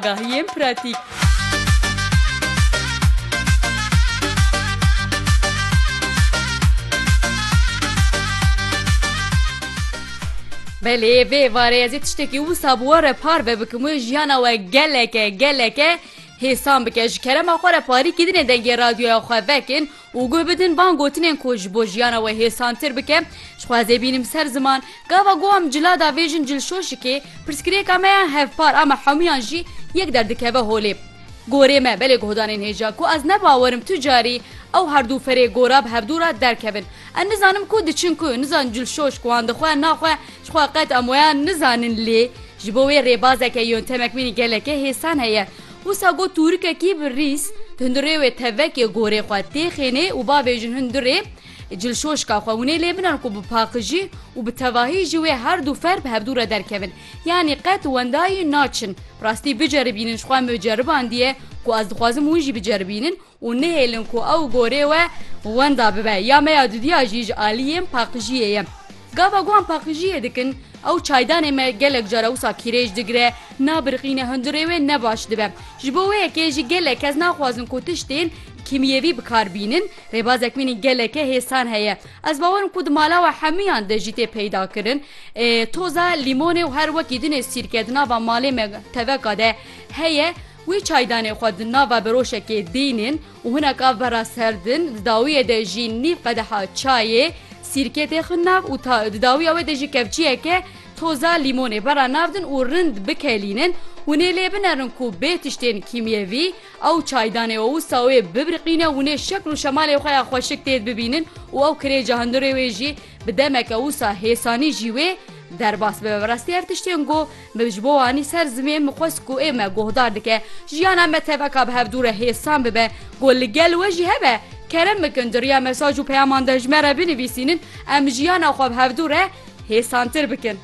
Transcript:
Agahiyên pratîk. Belê vê êvarê ez ê tiştekî wisa bi we re parve bikim wê jiyana we geleke geleke hêsan bike ji kerema xwe re parîkî dinê dengê radyoya xwe vekin û guh bidin van gotinên ku ji bo jiyana we hêsantir bike, ji xwe ez ê bînim ser ziman, gava guh em cila da vê jin cilşoşikê, pirsgirêka me ya hevpar a me hemûyan jî yek der dikeve holê. Gorê me belê guhdanên hêja ku ez ne bawer im tu carî ew herdû ferê gora bi hevdû re derkevin. Em nizanim ku diçin ku, nizanin cilşoşk wan dixwe naxwe, ji xwe qet em weya nizanin lê ji bo wê rêbazeke yöntemekmînî geleke hêsan heye. Wisa got tûrikekî bi rîs, Hundirê wê tevekê gorê xwe tê xênê û bavê jin hundirê cilşoşka xwe winê lê binan ku bi paqijî û bi tevahî ji wê herdû fer bi hevdû re derkevin. Yanî qet wendayî naçin. Rastî biceribînin ji xwe mi ceribandiye ku ez dixwazim win jî biceribînin Û nihêlin ku ew gorê we wenda bibe. Ya me ya dudiya jî ji aliyên paqijiyê ye. Gava guhan paqijiyê dikin, ew çaydanê me gelek cara wisa kîrêj digire, nabiriqîne hundirê wê ne baş dibe. Ji bo wê yekê jî gelek kes naxwazin ku tiştên kîmyevî bi kar bînin. Rêbazek mînî geleke hêsan heye. Ez bawer im ku di mala we hemûyan de jî tê peyda kirin. Toza lîmonê û her wekî dinê sîrke di nava malê me teveka de heye. Wê çaydanê xwe di nava beroşekê dînin û hinek av vera ser din, di dawiyê de jî nîv qedeha çayê sîrkê tê xwin nav û ta di dawiya wê de jî kevçiyeke toza lîmonê vera nav din û rind bikelînin. Hûn ê lê binerin ku bê tiştên kîmyevî ew çaydanê û wisa wê bibirqîne, hûn ê şekl û şemalê xwe ya xweşik têd bibînin û ew kirêca hundirê wê jî bi demeke wisa hêsanî jî wê derbas bibe. Bi rastî her tiştên ku Min ji bo anî ser zimên min xwest ku ê me guhdar dike. Jiyana me teveka bi hevdû re hêsan bibe ku li gel we jî hebe. Kerem bikin di riya mesaj û peyaman de ji me re binivîsînin em jiyana xwe bi hevdû re hêsantir bikin.